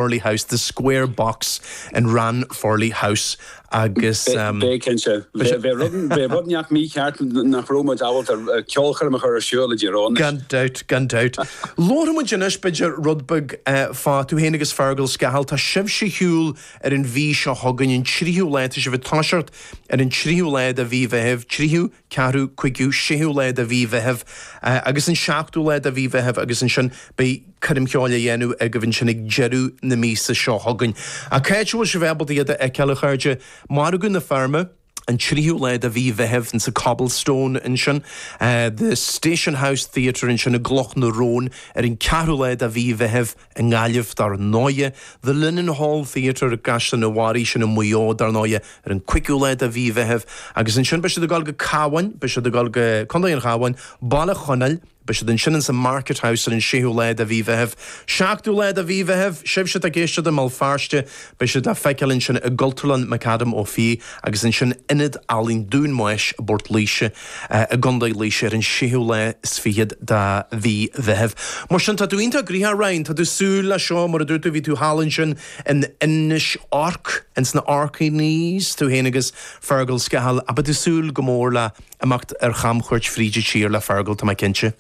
Furley House, the square box in Ranfurly House agus. B'ea cinnte. Bheadh rud inteacht mícheart nach raibh muid ábalta ceolchoirm a chur ar siúl, i dTír Eoghain. Gan dabht, gan dabht. Labharfaidh muid anois, b'fhéidir, rud beag fá, tú féin agus Fergal Scahill, tá sibhse ar shiúl ar an mhí seo chugainn, an tríú lá, tá sibh ag toiseacht ar an tríú lá de mhí Mheithimh, tríú, 4ú, 5ú, 6ú lá de mhí Mheithimh agus an 7ú lá de mhí Mheithimh agus ansin beidh coirm cheoil á dhéanamh agaibh ansin ag deireadh na míosa seo chugainn. Ach cá háit a bhfuil sibh ábalta iad a fheiceáil, a chairde? Margadh na Feirme, an 3ú lá de mhí Mheithimh sa Cobblestone ansin, The Station House Theatre ansin i gCloch na Rón ar an 4ú lá de mhí Mheithimh, I nGaillimh, dar ndóighe, The Linenhall Theatre i gCaisleán an Bharraigh, sin i Maigh Eo, dar ndóighe, ar an 5ú lá de mhí Mheithimh, agus ansin beidh siad ag dul go Cabháin, beidh siad ag dul go Contae an Chabháin, Baile Chonaill, beidh siad ansin ins an Market House ar an 6ú lá de mhí Mheithimh, 7ú lá de mhí Mheithimh, sibhse atá ag éisteacht i mBéal Feirste, Beidh siad le feiceáil ansin i gCultúrlann McAdam Ó Fiaich agus ansin Ionad Ealaíon Dún Mhaois i bPort Laoise i gContae Laoise ar an séú lá is fichead de mhí Mheithimh. Mar sin, tá tú iontach gnoitheach, Ryan. Tá tú ag súil leis seo, mar a dúirt tú, bhí tú thall ansin in Inis Orc, ins na Orkneys, tú féin agus Fergal Scahill, ach beidh tú ag súil go mór le himeacht ar chamchuairt fríd an tír le Fergal, tá mé cinnte.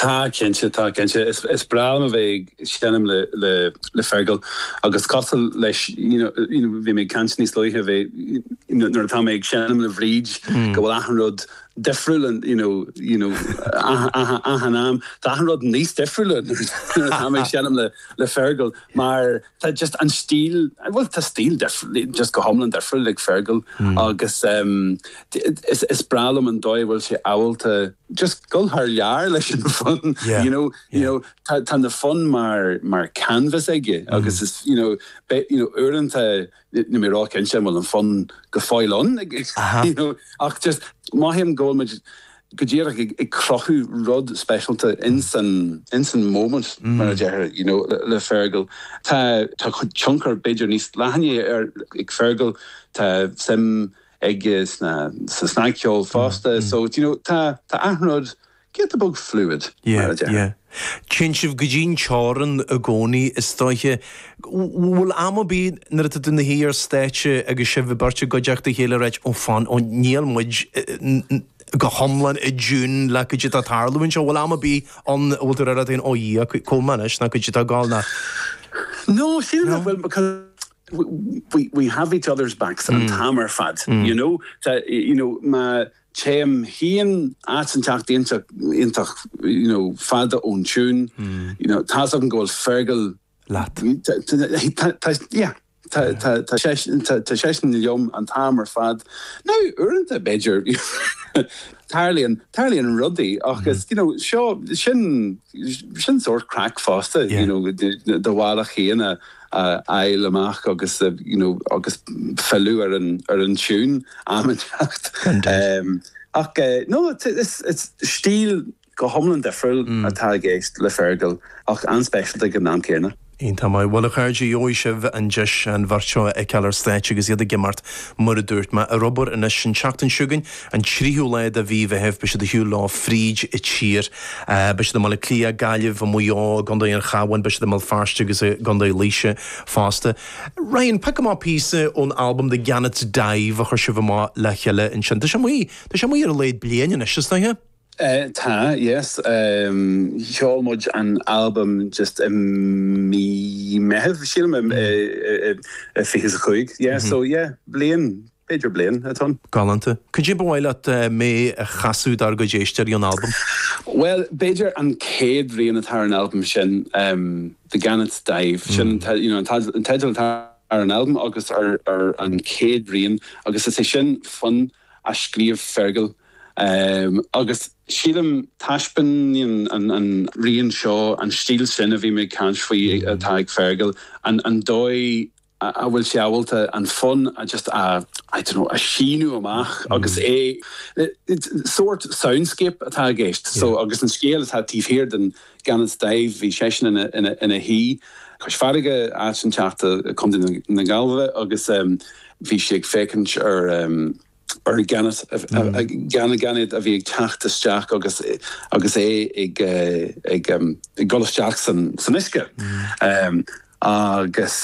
Tá, cinnte, tá, cinnte. Is, is breá liom a bheith ag seinm le, le, le Fergal agus cosúil leis, you know, you know, bhí mé ag caint níos luaithe a bheith, you know, nuair atá mé ag seinm le Bhríd go bhfuil achan rud difriúil and, you know, you know, achan, achan, achan am, tá achan rud níos difriúla nuair atá mé ag seinm le, le Fergal mar, tá just an stíl, bhuel tá stíl difriúil, just go hiomlán difriúil ag Fergal agus is breá liom an dóigh a bhfuil sé ábalta just dul thar lear leis an bhfonn, you know, you know, tá na fonn mar, mar canvas aige agus is, you know, you know, uaireanta níl mé róchinnte an bhfuil an fonn go fóill ann, you know, ach just mothaím go bhfuil muid, go díreach ag cruthú rud speisialta ins an móimint mar a deirtear you know le Fergal. Tá tá tionchar b'fhéidir níos leithne ar ag Fergal, tá suim aige sna sa snagcheol fosta so do you know tá tá achan rud giota beag fluid mar a deirtear. Yeah yeah. Téann sibh go dtí an teorann i gcónaí is dóiche. Bhfuil am ar bith nuair atá tú na shuí ar stáitse agus sibh beirt i gcuideachta a chéile ag ráit oh fan oh níl muid go hiomlán i dtiún le caidé atá ag tarlú anseo. Bhfuil am ar bith ann a bhfuil tú ag rá leat féin 'Ó a Dhia, cá bhfuil mé anois nó caidé atá ag gabháil nó. No, sílim nach bhfuil because we have each other's backs an t-am ar fad, you know. Tá, you know, má téim féin áit inteacht iontach, you know, fada ón tiún, you know, tá's agam go bhfuil Fergal leat? Tá seisean liom an t-am ar fad. Nó uaireanta, b'fhéidir, tarlaíonn rudaí ach is, you know, seo, sin, sin sórt craic fosta, you know, do bhealach féin a fháil amach agus, you know, agus filleadh ar an, ar an tune, am inteacht. Ach, no, it's, it's, it's stíl Go hiomlán difriúil atá i gceist le Fergal, ach an-speisialta ag an am céanna. Iontach maith. Bhuel a chairde, gheobhaidh sibh an deis an bheirt seo a fheiceáil ar stáitse agus iad ag imeacht, mar a dúirt mé, ar bóthar anois. An tseachtain seo chugainn, an tríú lá de mhí Mheithimh, beidh siad ag siúl leo fríd an tír. Beidh siad i mBaile Átha Cliath, Gaillimh, i Maigh Eo, i gContae an Chabháin, beidh siad i mBéal Feirste agus i gContae Laoise fosta. Ryan, pioc amach píosa ón albam The Gannet's Dive a chuir sibh amach le chéile ansin. Tá sé amuigh, tá sé amuigh ar a laghad bliain anois, is dóiche? Tá, yes. Sheol muid an albam just i mí Meitheamh, sílim, i fiche is a cúig, yeah, so yeah, bliain, b'fhéidir bliain atá ann. Galánta. Cad é ba mhaith leat mé a chasadh dár gcuid éisteoirí ón albam? Bhuel, b'fhéidir an chéad rian atá ar an albam sin, The Gannet's Dive, sin, you know, an teideal atá ar an albam agus ar an chéad rian agus is é sin fonn a scríobh Fergal Agus sílim, taispeáineann an rian seo, an stíl sin a bhí mé ag caint faoi atá ag Fergal, an dóigh a bhfuil sé ábalta an fonn a just a, I don't know, a shíneadh amach agus é, sórt soundscape atá i gceist. So, agus an scéal atá taobh thiar den Gannet's Dive, bhí seisean ina shuí cois farraige, áit inteacht, Co. na Gaillimhe, agus bhí sé ag féachaint ar. Ar an gannet, gainéad a bhí ag teacht isteach agus é ag dul isteach san uisce agus.